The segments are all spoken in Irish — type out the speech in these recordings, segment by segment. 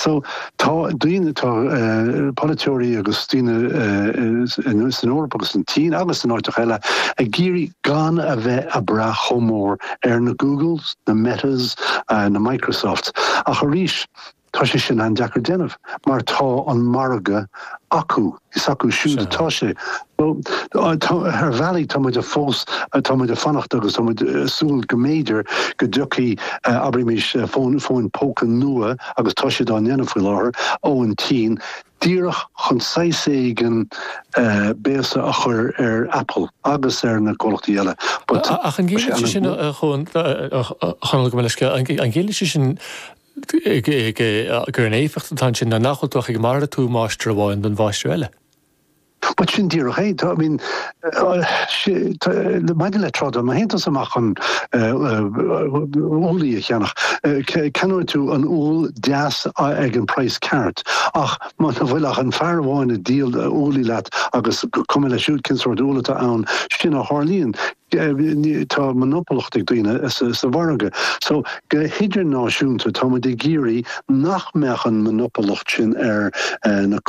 So, tá daoine, tá polaiteoirí agus daoine san Eoraip agus an tSín agus in áiteacha eile ag iarraidh gan a bheith ag brath chomh mór ar na Googles, na Metas, na Microsofts ach arís, tá sé sin an-deacair déanamh mar tá an margadh acu. Is acu siúd atá sé. Ar bhealaí tá muid a fós tá muid ag fanacht agus tá muid ag súil go mb'fhéidir go dtiocfaidh abraímis fón fóin póca nua agus tá siad á ndéanamh faoi láthair ó an tSín díreach chun saghas éigin béasa a chur ar Apple agus ar na comhlachtaí eile. Ach an gciallaíonn sin, a Chonaill, gabh mo leithscéal, an gciallaíonn sin gurb é an éifeacht atá ansin ná nach bhfuil tú ach ag malartú máistir amháin don mháistir eile. Bhuel, sin díreach é. I mean, maidir le trádáil má théann tú amach chun úllaí a cheannach, ceannóidh tú an úll deas ag an praghas ceart ach muna bhfuil ach an fear amháin ag díol úllaí leat agus is cuma leis siúd cén sórt úll atá ann, sin a tharlaíonn. tá monopolacht ag daoine sa mhargadh so go hidirnáisiúnta tá muid ag iarraidh nach mbeadh an monopolacht sin ar na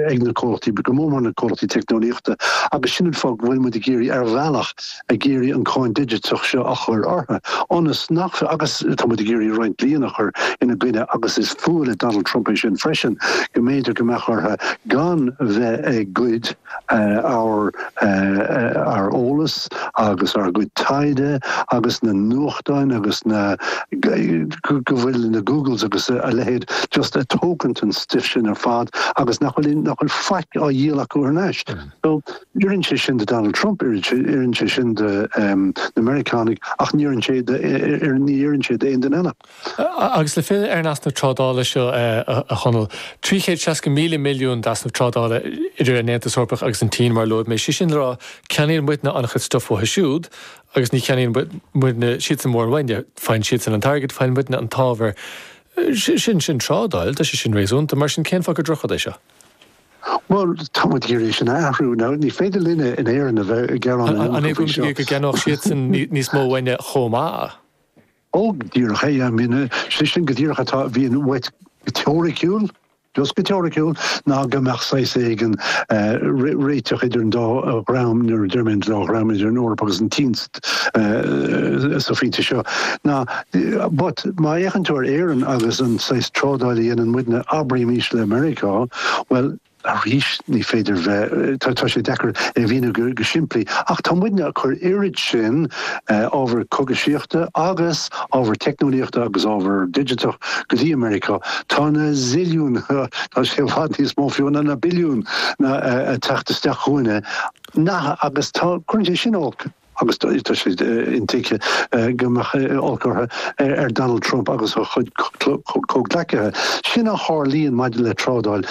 ag na comhlachtaí go mór mór na comhlachtaí teicneolaíochta agus sin an fáth go bhfuil muid ag iarraidh ar bhealach ag iarraidh an cáin digiteach seo a chur orthu ionas nach agus tá muid ag iarraidh roinnt dlí a chur ina gcoinne agus is fuath le Donald Trump é sin freisin go mb'fhéidir go mbeadh orthu gan bheith ag goid ár n-eolas agus ár gcuid taighde agus na nuachtáin agus go bhfuil na Googles agus a leithéid just a' tógaint an stuif sin ar fad agus nach bhfuil nach bhfuil faic á dhíol acu thar n-ais. So, oireann sé sin do Donald Trump, oireann sé sin do na Meiriceánaigh ach ní oireann sé do ní oireann sé d'aon duine eile. Agus le filleadh ar an easnamh trádála seo, a Chonaill, 360,000 milliún d'easnamh trádála idir an Aontas Eorpach agus an tSín, mar a luaigh mé, sé sin le rá, ceannaíonn muidne an-chuid stuif uathu siúd agus ní cheannaíonn siadsan mórán uainne, faigheann siadsan an t-airgead, faigheann muidne an t-ábhar, sin, sin trádáil, tá sé sin réasúnta, mar sin cén fáth gur drochrud é seo? Bhuel, tá muid ag iarraidh sin a athrú. Now, ní féidir linne in Éirinn a bheith ag gearán in aon chor faoi seo. An é go mb'fhéidir go gceannódh siadsan níos mó uainne chomh maith? Go díreach, I mean, sé sin go díreach atá, a bhíonn uait go teoiriciúil, just go teoiriciúil, ná go mbeadh saghas éigin réiteach idir an dá dhream, nuair a deir mé an dá dhream, idir an Eoraip agus an tSín sa phointe seo. Now but má fhéachann tú ar Éirinn agus an saghas trádáil a dhéanann muidne, abraímís le Meiriceá, bhuel, Arís, ní féidir a bheith. Tá sé deacair é a mhíniú go simplí, ach tá muidne ag cur oiread sin ábhar cógaisíochta agus ábhar teicneolaíochta agus ábhar digiteach go dtí Meiriceá, tá na zilliúin, tá sé i bhfad níos mó fiú ná na billiúin, ag teacht isteach chugainne, agus cuireann sé sin olc agus tá sé intuigthe go mbeadh olc orthu ar Donald Trump agus a chuid comhghleacaithe. Sin a tharlaíonn maidir le trádáil.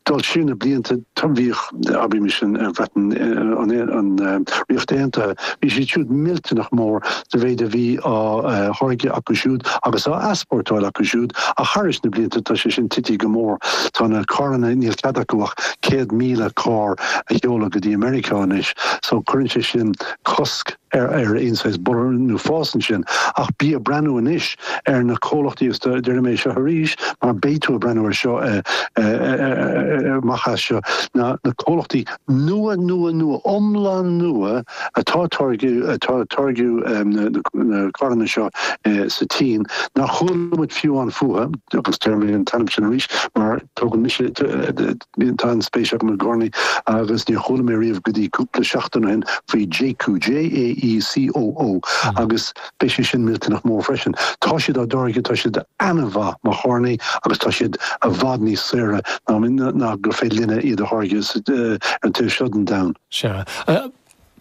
Dul siar na blianta, bhíodh, abraimis, an Bhreatain, an Ríocht Aontaithe, bhí siad siúd millteanach mór sa mhéid a bhí á tháirgeadh acu siúd agus á easpórtáil acu siúd, ach thar na blianta tá sé sin tite go mór. Tá na carranna, níl cead acu ach 100,000 carr a sheoladh go dtí Meiriceá anois. so cuireann sé sin cosc ar aon saghas borradh nó fás ansin ach bí ag breathnú anois ar na comhlachtaí agus déarfaidh mé seo arís mar beidh tú ag breathnú air seo amach as seo, na comhlachtaí nua, nua, nua, iomlán nua atá ag táirgeadh, atá ag táirgeadh na carranna seo sa tSín nár chuala muid fiú ann fúthu agus déarfaidh mé an t-ainm sin arís mar tógann mise, Bíonn an-spéis agam i gcarranna agus níor chuala mé riamh go dtí cúpla seachtain ó shin faoi Jaecoo, J-a-e-c-o-o, agus beidh sé sin millteanach mór freisin. Tá siad á dtáirgeadh, tá siad an-mhaith mar charranna agus tá siad i bhfad níos saoire ná gur féidir linne iad a tháirgeadh ar an taobh seo den domhan. Sea.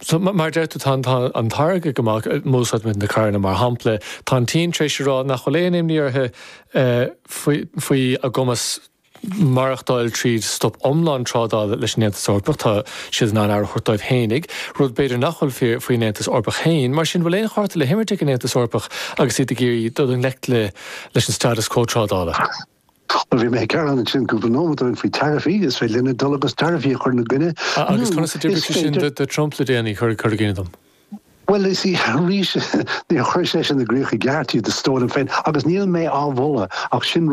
So, mar a deir tú, tá an táirge go maith, má úsáideann muid na carranna mar shampla. Tá an tSín tar éis a rá nach bhfuil aon imní orthu faoi a gcumas maireachtáil tríd stop iomlán trádála leis an Aontas Eorpach, tá siad in ann aire a thabhairt dóibh féinig, rud b'fhéidir nach bhfuil fíor faoin Aontas Eorpach féin. Mar sin, an bhfuil aon chárta le himirt ag an Aontas Eorpach agus iad ag iarraidh dul i ngleic leis an status quo trádála? Bhí mé ag gearán ansin cúpla nóiméad ó shin faoi taraifí, is féidir linne dul agus taraifí a chur ina gcoinne, nó is féidir. Agus conas a d'oibrigh sé sin do Trump le déanaí, cuir i gcuimhne dom? Bhuel, is ea, arís níor chuir sé sin i gcrích i gceart, iad a stór liom féin, agus níl mé á mholadh ach sin.